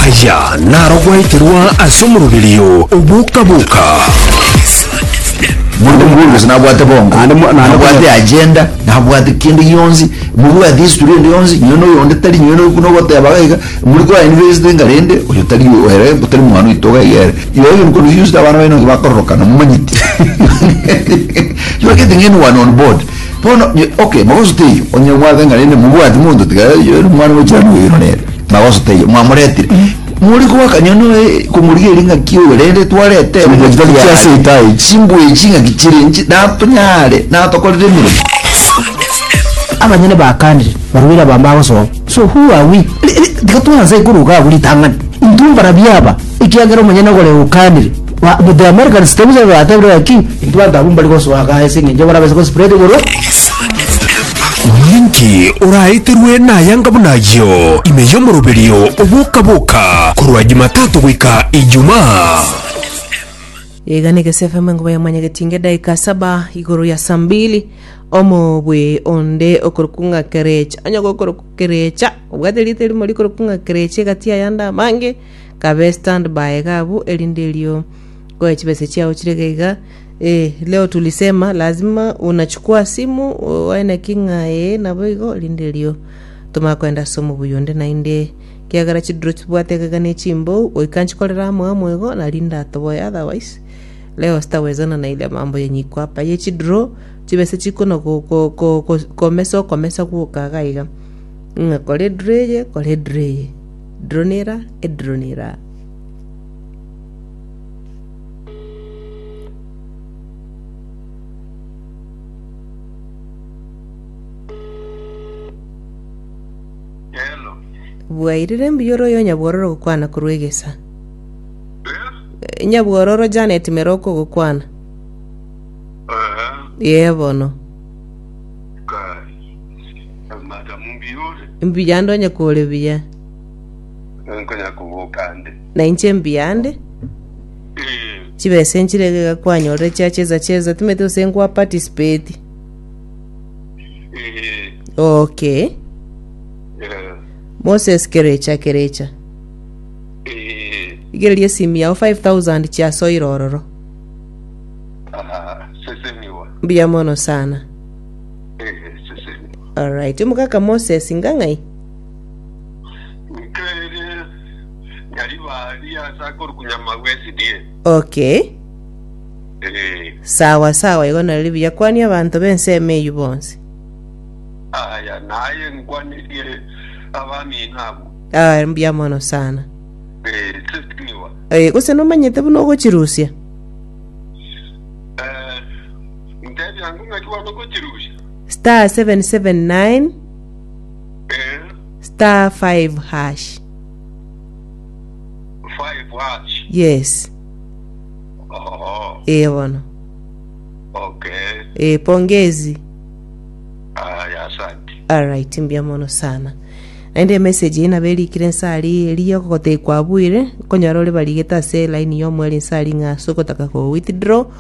Aya naro gwaeterwa ase omoroberio oboka-boka. Monto mokong'u gose nabwate bongo Naende mo- naende nabwate konya- agenda nabwate kende gionsi mobwate history ende yonsi nonye na oyonde tari nonye na oyio buna ogoteba iga muri ko invest iga rende oyo tari oyo ere tari mwana oito iga iga ere igo oyo nkono yonsi abana baino nabo bakororokana momanyeti you are getting anyone on board Bono, ye, okay, magoso teiyo, onye mwabete ng'a rende mobwati monto tiga yori mwana bwa chirani oyo nere, magoso teiyo, mwamoretire. More koakanya noe komorigeria ng'aki oyo rende twarete Chimbuya chitari chia seita echi. Chimbuya echi ng'aki chire inche natonyare natokorere emeremo. Abanyene bakanire, barwere abamo bagosoa, so who are we? Ri- ri- Tiga twanse korwa iga abwo ritang'ani, intwe mbarabwo aba, ekiagera omonyene ogore okanire. Ba- but the Americans table service are table like king. Into bantu abu mbari gosoa ga ese ngenje bona bese go spread igoro. Ninki oraeterwe nayanga buna ayio ime y'omoroberio oboka-boka korwa Jumatatu goika Ijumaa. Iga ni Gese FM enkuba ya mwanyagetinge daika saba igoro ya saa mbili omobwe onde okorokunga kerecha onye gokoroku kerecha obwate rite rimo rikorokunga kerecha egati ayanda amange kabe stand by iga abwo erinde erio nkoye chibesa chiao chire iga iga eh, leo tulisema lazima unachukua simu uwae naki ng'a ee nabo igo erinde erio tomanye koenda ase omobuya onde naende kiagera chidiro chibwate iga iga na echimbou goika nchikorera amo amo igo nari ndatoboe otherwise leo sitawezana na ile mambo yenyu iko apa ye chidiro chibesa chikona go- go- go- go- komesa okomesa gwoka iga iga ng'a kora ediro eye kora ediro eye Dronira, Edronira. Hello. Bwairire mbuya ore oyo nyabwororo gokwana korwa egesa. Eh? Nyabwororo Janet Meroko gokwana. Eh. Ye bono. Eh, Madam, mbiure. Mbuya ndonye kore buya. Eh, Nkonya koboka ande. Na inche mbuya nde. Eh, Chibesa enchirege ga kwanyorire chia cheza cheza timete ose nkwa participate. eh, Okay. eh, Moses kerecha kerecha. eh. Igereria esimu yao 5000 chia soira ororo. Aha, seseniwa. Mbuya mono sana. Alright, omogaka Moses inga ng'ai? Nkaerie nyari baria ase akorukunya amagwe esidie. Okay, Eh, sawa sawa, igo nari buya kwania abanto b'ensemo eyio bonsi. aya naye nkwanirie abamina abo. Ah, mbuya mono sana. Eh, sesiniwa. Eh, gose nomanyete buna ogochirusia? Inta ebiango ng'aki bwango gochirusia? star 779 Eh, star 5 hash five watch. yes Oh, ee bono okay. ee pongezi Aya, asante. alright mbia mono sana naende emessage eye nabo erikire nsari eriyo gogotekwa abuire konyora ore barigete ase line y'omweri nsari ng'a ase ogotaka ko withdraw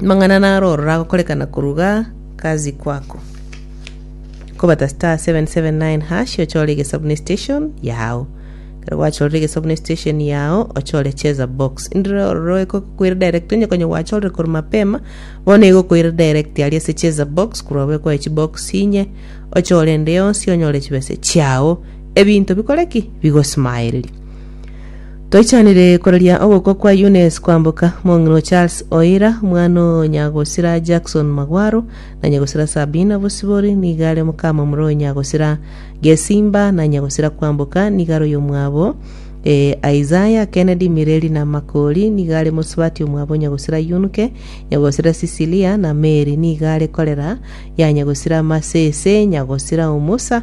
Amang'ana narorora agokorekana koruga kazi kwako. Kobata star 779 hash ochore egesabuni station yao. Kero gwachorire egesabuni station yao ochore cheza box. Indire ororo ekokwira direct onye konye gwachorire koru mapema bono egokwira direct ari ase cheza box kurwa bwe kwa chi box inye ochore ende yonsi onyore chibese chiao. Ebinto bikore ki? Bigosmayereria. Toichanire koraria ogokwa kwa Eunice kwamboka, mong'ina o Charles Oira, mwana o Nyagosira Jackson Magwaro, na Nyagosira Sabina Bosibori, nigo are mokamomura o Nyagosira Gesimba, na Nyagosira kwamboka nigo are oyomwabo e Isaiah Kennedy Mireri na Makori, nigo are mosubati omwabo Nyagosira Yunuke, Nyagosira Cecilia na Mary, nigo are korera ya Nyagosira Masese, Nyagosira Omusa,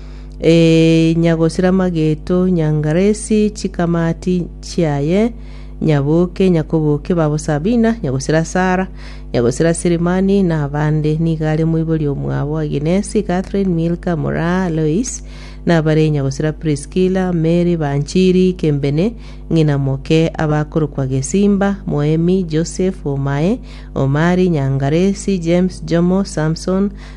Ee, nyagosira mageto, nyangaresi chikamati chiaye, nyaboke, nyakoboke babo Sabina, nyagosira Sara, nyagosira Sirimani, na abande niga are moibori omwabo Aginesi, Catherine, Milka, Moraa, Lois, na abare nyagosira Priskila, Mary, Banchiri, Kembene, ng'ina moke, abakorokwa Gesimba, Moemi, Joseph, Omae, Omari, Nyangaresi, James, Jomo, Samson,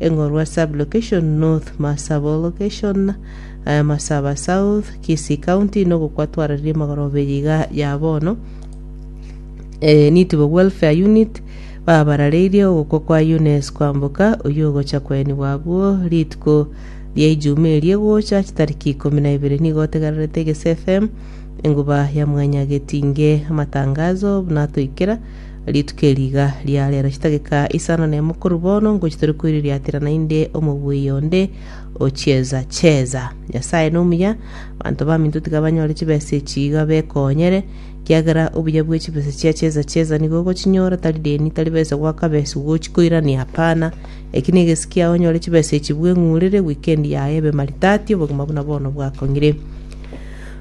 Eng'orwa Sub-location, North Marsabal Location, Marsaba South, Kisii County, nogokwa twarareria magoroberia iga ya bono. Eh, Nitibo Welfare Unit, babarareirie ogokwa kwa Eunice Kwamboka, oyio ogocha koenigwa abwo rituko ria Ijumaa eri egocha, chitariki ikomi na ibere. Nigo otegererete Gesi FM, Enguba ya Mwanya Getinge, amatangazo buna atoikera. Rituko eri iga ria rero chidageka isano na emo korwa bono ngochia tore koiriratera naende omobuya onde o chieza cheza. Nyasae nomuya, abanto baminto tiga banyore chibesa echi iga bekonyere, ekiagera obuya bwe chibesa chia chieza cheza nigo ogochinyora, tari deni, tari besa goaka besa gochikoirania, hapana. Eki negesio kiao onyore chibesa echi bweng'urere, weekend yaye ebe maridadi, obogima buna bono bwakong'ire.